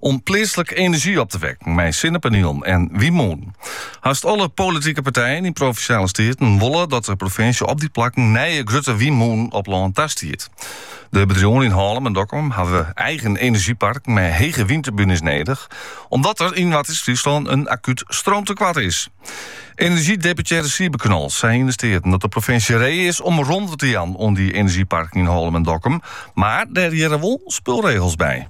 om pleatslik enerzjy op te wekken mei sinnepanielen en wynmûnen. Hast alle politike partijen yn provinsjale steaten wolle dat de provinsje op dy plakken nije grutte wynmûnen op lân tastiet. De bedriuwen yn Hallum en Dokkum hawwe eigen enerzjyparken mei hege wynturbunes nedich, omdat der yn Noardeast-Fryslân in akút stroomtekoart is. Enerzjydeputearre Siebe Knol sei yn de Steaten dat de provinsje ree is om romte te jaan oan dy enerzjyparken yn Hallum en Dokkum, mar dêr hearre wol spulregels by.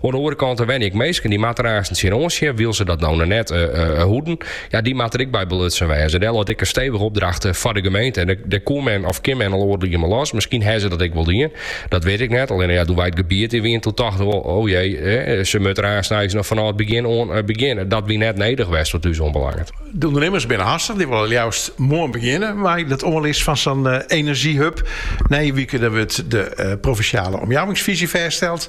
Oan de oare kant, der wenje ek minsken dy't moatte der aansen tsjin oan sjen, wylst se dat no noch net hoeden. Ja, dy moatte der ek by belutsen wêze. Dêr leit ek in stevige opdracht foar de gemeente. En dêr koe men of kin men al oardel moanne mei los. Miskien hawwe se dat ek wol dien, dat wit ik net. Allinne ja, doe wy it gebiet yn wiene, doe tochten we wol, o jee, se moatte der aansens noch fanôf it begjin oan begjinne. Dat wie net nedich west wat ús oanbelanget. De ûndernimmers binne hastich. Dy wolle leafst moarn begjinne mei dat oanlis fan sa'n enerzjyhub. Nije wike dan wurdt de provinsjale omjouwingsfyzje fêststeld.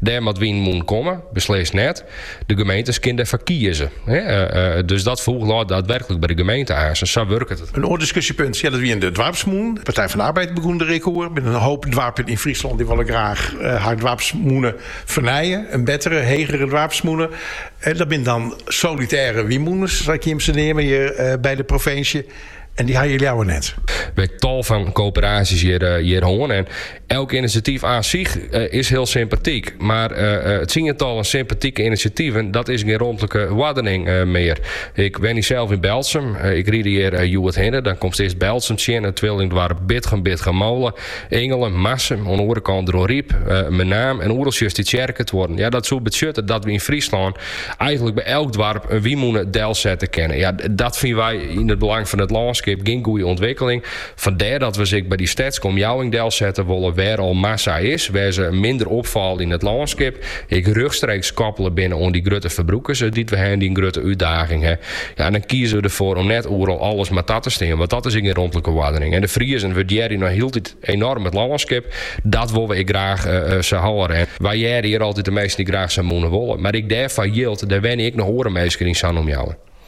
Dêr moatte wynmûnen komme, beslist net. De gemeente kinne derfoar kieze. Dus dat foech leit daadwerklik by de gemeente aansen. Sa wurket it. In oar diskusjepunt ja, dat wienen de doarpsmûnen. De Partij van de Arbeid begûn der ek oer. Der binne in hoop doarpen yn Fryslân dy wolle ek graach har doarpsmûne fernije. In bettere, hegere doarpsmûne. Dat binne dan solitêre wynmûnen, sa kin je se neamen hjir by de provinsje. En dy ha je leaver net. We ha in tal fan koöperaasjes hjir hân. En Elk inisjatyf an sich is hiel sympatyk, mar tsientallen sympatike inisjativen dat is gjin romtlike oardening mear. Ik wenje sels yn Berltsum. Ik ride hjir hjoed hinne. Dan komst earst Berltsum, it twillingdoarp Bitgum, Bitgummole, Ingelen, Marsum, oan de oare kant Dronryp, Menaam en oeral sjochst dy tsjerketuorren. Dat soe betsjutte dat we yn Fryslân eigenlik by elk doarp in wynmûne delsette kinne. Dat fine wy yn it belang fan it lânskip gjin goede ûntwikkeling. Fandêr dat we se ek by dy stedske omjouwing delsette wolle wêr al massa is, wêr se minder opfalle yn it lânskip, ek rjochtstreeks koppele binne oan dy grutte ferbrûkers dy't we ha en dy't in grutte útdaging ha. Ja, dan kieze we derfoar om net oeral alles mar ta te stean, want dat is ek gjin romtlike oardening. En de Friezen wurdearje noch hieltyd enoarm it lânskip, dat wolle we ek graach sa hâlde. En wy hearre hjir altyd de minsken dy't graach sa'n mûne wolle. Mar ek dêrfoar jildt, der wenje ek noch oare minsken yn sa'n omjouwing.